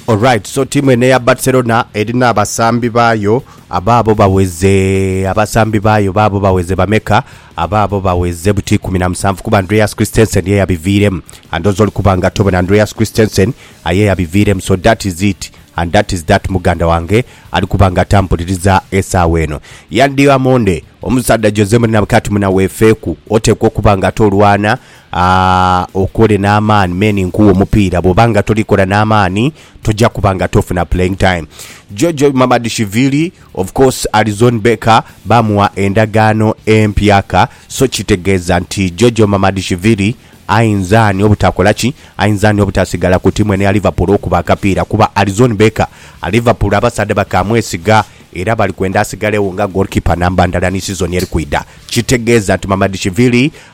Alright, so tiimu eno eya Barcelona erina abasambi baayo abaabo baweze abasambi baayo baabo baweze bameka? Abaabo baweze buti ikumi na musanvu kuba Andreas Christensen ye yabiviiremu and oze oli kuba nga tobona Andreas Christensen aye yabiviiremu so that is it and that is that muganda wange ali kuba nga tampuliriza esaawa eno. Yan Diamonde omusaadha Jose Mourinho abweka ati muna weefeeku oteekwa okuba nga ate olwana A, Okole n'amaani men nkuwe omupiira. Bw'oba nga toli kola n'amaani, toja kuba nga tofuna playing time. Jojo Mamadishvili, of course Alizon Becker baamugha endagaano empya ka, so kitegeeza nti Jojo Mamadishvili ayinza ani obutakola ki? Ayinza ani obutasigala ku tiimu eno eya Liverpool okuba akapiira? Kuba Alizon Becker, Liverpool abasaadha bakaamwesiga era bali kwenda asigalegho nga goalkeeper namba ndala ni sizoni eri kwidha. Kitegeeza nti Mamadishvili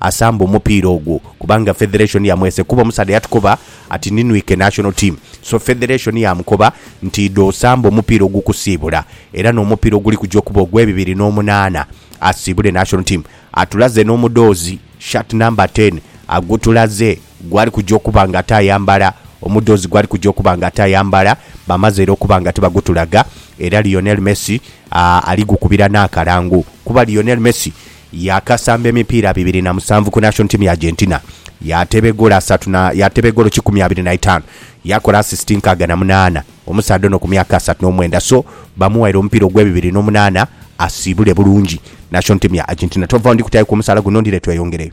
asambe omupiira ogwo kubanga federation yamwese kuba omusaadha yatukoba ati ninwike national team so federation yamukoba nti idha osambe omupiira ogukusiibula era n'omupiira oguli kuja okuba ogwe bibiri n'omunaana asiibule national team atulaze n'omudoozi, shirt number ten, agutulaze gwali kuja okuba nga ate ayambala omudoozi gwali kuja okuba nga ate ayambala bamaze era okuba nga tibagutulaga era Lionel Messi ali gukubira n'akalango kuba Lionel Messi Yaakasamba emipiira bibiri na musanvu ku national team ya Argentina, yaateeba egoolo asatu na yaateeba egoolo kikumi abiri na itaanu, yaakola asisiti nkaaga na munaana. Omusaadha ono ku myaka asatu n'omwenda so bamuwaire omupiira ogw'ebibiri n'omunaana asiibule bulungi national team ya Argentina. Tova, ndi kutaayoku omusaala guno ndidhe tweyongereyo.